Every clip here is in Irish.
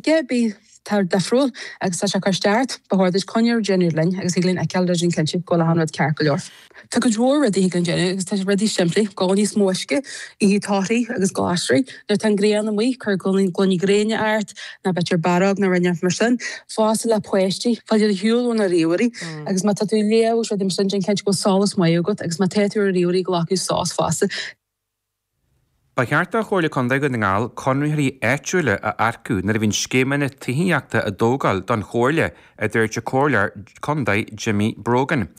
ar bith atá difriúil agus tá sé ag cur isteach ort, ba chóir duit coinne a dhéanamh linn agus thig linn fheiceáil déanamh cinnte go bhfuil achan rud ceart go leor. Tá cuid mhór rudaí thig linn déanamh agus tá rudaí simplí, ól níos mó uisce, ithe torthaí agus glasraí, nuair tá an ghrian amuigh cuir gloiní gréine ort, nó b'fhéidir bearád nó rud inteacht mar sin, fosta le páistí, fáil ar shiúl ó na ríomhairí agus má tá tú ag léamh agus rudaí mar sin déan cinnte go bhfuil solas maith agat agus má tá tú ar na ríomhairí glacadh sos fosta. Ba cheart do Chomhairle Contae Dhún na nGall conraitheoirí áitiúla a earcú nuair a bhíonn scéimeanna tithíochta á dtógáil don Chomhairle, a dúirt an Comhairleoir Contae Jimmy Brogan.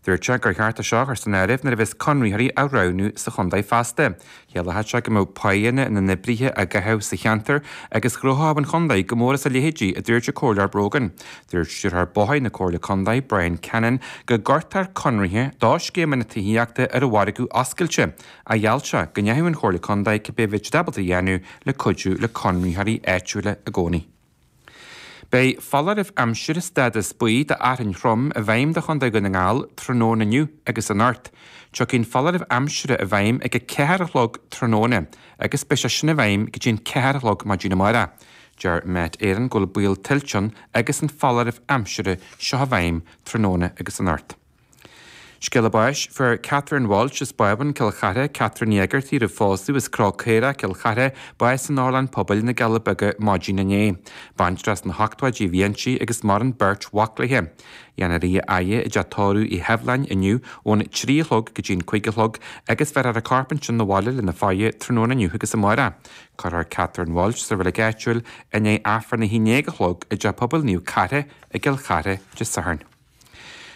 Dúirt sé gur cheart é seo a chur san áireamh nuair a bheas conraitheoirí á roghnú sa chontae feasta. Chiallódh sé go mbeadh páigheanna na n-oibrithe á gcaitheamh sa cheantar agus ghnóthódh an chontae go mór as a leithéid, a dúirt an Comhairleoir Brogan. Dúirt Stiúrthóir Bóithre na Comhairle Contae, Bryan Cannon, go gcuirtear conraithe do scéimeanna tithíochta ar an mhargadh oscailte, ach gheall sé go ndéanfadh an Chomhairle Contae cibé a bheadh siad ábalta a dhéanamh le cuidiú le conraitheoirí áitiúla i gcónaí. Beidh foláireamh aimsire stádas buí d'fhearthainn throm i bhfeidhm do Chontae Dhún na nGall tráthnóna inniu agus anocht. Tiocfaidh an foláireamh aimsire i bhfeidhm ag a ceathair a chlog tráthnóna agus beidh sé sin i bhfeidhm go dtí an ceathair a chlog maidin amárach. Deir Met Éireann go bhfuil baol tuilte ann agus an foláireamh aimsire seo i bhfeidhm tráthnóna agus anocht. Scéala báis, fuair Catherine Walsh as Bábhún Cill Chartha, Catherine Ní Éigeartaigh roimh phósadh as Cró Caorach, Cill Chartha, bás in Otharlann Pobail na gCealla Beaga maidin inné. Baintreach sna hochtóidí a bhí inti agus maireann beirt mhac léi. Déanfar í a fhaire i dteach tórraimh Uí Sheibhleáin inniu ón trí a chlog go dtí an cúig a chlog agus bhéarfar an corp ansin 'na bhaile lena fhaire tráthnóna inniu agus amáireach. Cuirfear Catherine Walsh sa reilig áitiúil i ndiaidh Aifreann a haon dhéag a chlog i dteach pobail Naomh Cartha i gCill Chartha Dé Sathairn.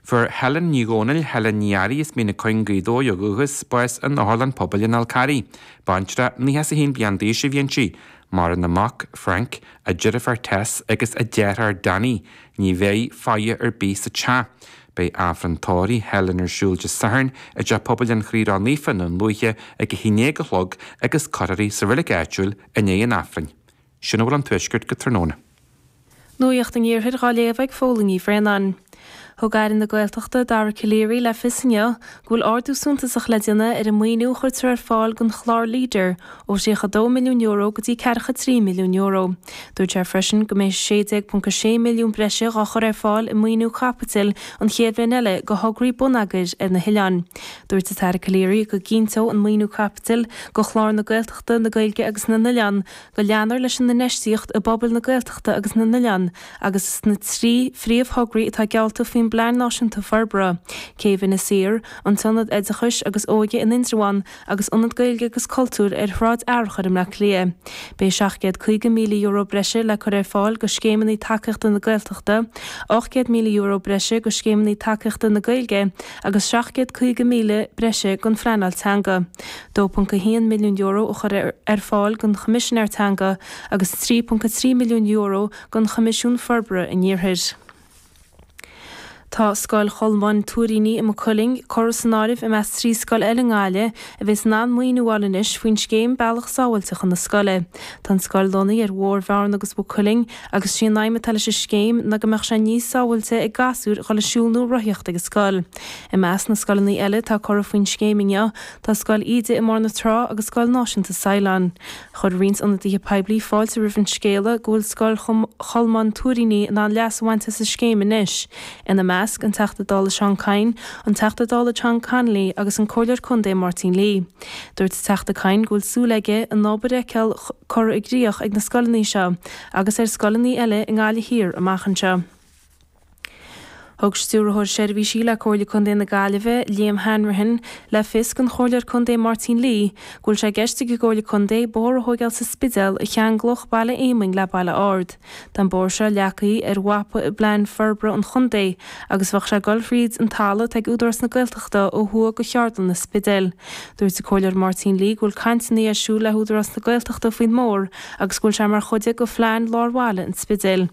Fuair Helen Ní Dhomhnaill, Helen Ní Fhearraigh as Mín na Cuinge, Gaoth Dobhair ó dhúchas, bás in Otharlann Pobail an Fháil Charraigh. Baintreach nócha is a haon bliain d'aois a bhí inti. Maireann a mac, Frank, a deirfiúr Tess agus a deartháir Danny. Ní bheidh faire ar bith sa teach. Beidh Aifreann tórraimh Helen ar siúl Dé Sathairn i dTeach Pobail an Chroí Ró-Naofa i nDún Lúiche ag a haon dhéag a chlog agus cuirfear í sa reilig áitiúil i ndiaidh an Aifrinn. Sin a bhfuil ón tuaisceart go tráthnóna. Nuacht an Iarthair dhá léamh ag Fódhla Ní Bhraonáin. Thug Aire na Gaeltachta, Dara Calleary, le fios inniu go bhfuil ardú suntasach le déanamh ar an maoiniú a chuirtear ar fáil don chlár Leader, ó €32 milliún go dtí €43 milliún. Dúirt sé freisin go mbeidh 16.6 milliún breise dhá chur ar fáil i maoiniú caipitil an chéad bhliain eile go thograí bonneagair ar na hoileáin. Dúirt an tAire Calleary go gcinnteodh an maoiniú caipitil do chlár na Gaeltachta, na Gaeilge agus na nOileán, go leanfar leis an infheistíocht i bpobail na Gaeltachta agus na n-oileán agus sna trí phríomhthograí atá geallta faoin bPlean Náisiúnta Forbartha, Céibh Inis Oírr, an tIonad Oideachais agus Óige in Indreabhán agus Ionad Gaeilge agus Cultúir ar Shráid Fhearchair i mBleá Cliath. Beidh €750,000 breise le cur ar fáil go Scéimeanna Tacaíochta na Gaeltachta, €800,000 breise go Scéimeanna Tacaíochta na Gaeilge agus €750,000 breise don phleanáil teanga. €2.1 milliún a chur ar fáil don Choimisinéir Teanga agus €3.3 milliún don Choimisiún Forbartha an Iarthair. Tá Scoil Cholmáin Tuairíní i Maigh Cuilinn curtha san áireamh i measc trí scoil eile i nGaillimh a bheas in ann maoiniú a fháil anois faoin scéim 'Bealach Sábháilte chun na Scoile'. Tá an scoil lonnaithe ar Bhóthar Bhearna agus Mhaigh Cuilinn agus 'sí an aidhm atá leis an scéim ná go mbeadh sé níos sábháilte ag gasúir a dhul ag siúl nó rothaíocht ag an scoil. I measc na scoileanna eile atá curtha faoin scéim inniu Tá Scoil Íde i mBóthar na Trá agus Scoil Náisiúnta Saighleáin. Chuir roinnt ionadaithe poiblí fáilte roimh an scéala go bhfuil Scoil Cholmáin Tuairíní in ann leas a bhaint as an scéim anois, ina measc, an Teachta Dála Seán Kyne, an Teachta Dála John Connolly agus an Comhairleoir Contae Máirtín Lee. Dúirt an Teachta Kyne go bhfuil súil aige an obair a fheiceáil curtha i gcríoch ag na scoileanna seo agus ar scoileanna eile i nGaillimh Thiar amach anseo. Thug Stiúrthóir Seirbhísí le Comhairle Contae na Gaillimhe, Liam Hanrahan, le fios don Chomhairleoir Contae Máirtín Lee go bhfuil sé i gceist ag an gComhairle Contae bóthar a thógáil sa Spidéal a cheanglódh Baile Éamoinn le Baile Ard. Tá an bóthar seo leagtha ar mhapa i bplean forbartha an chontae agus bheadh sé ag dul thríd an talamh atá ag Údarás na Gaeltachta ó thuaidh go Cheardlann an Spidéil. Dúirt an Comhairleoir Máirtín Lee go bhfuil cainteanna ar siúl le hÚdarás na Gaeltachta faoin mbóthar agus go bhfuil sé mar chuid de phlean lár bhaile an Spidéil.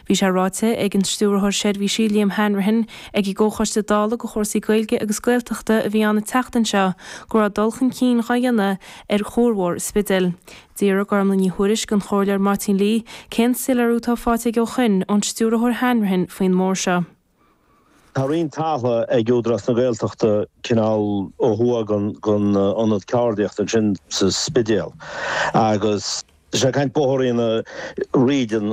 Bhí sé ráite ag an Stiúrthóir Seirbhísí, Liam Hanrahan, ag an gComhchoiste Dála do Chúrsaí Gaeilge agus Gaeltachta a bhí ann an tseachtain seo go raibh dul chun cinn dhá dhéanamh ar chuarbhóthar an Spidéil. D'fhiafraigh Gormfhlaith Ní Thuairisg don Chomhairleoir Máirtín Lee cén soiléiriú atá faighte aige ó shin ón Stiúrthóir Hanrahan faoin mbóthar seo. Tá roinnt talamh ag Údarás na Gaeltachta cineál ó thuaidh den ionad ceardaíochta ansin sa Spidéal agus tá sé ag caint bóthar a dhéanamh thríd an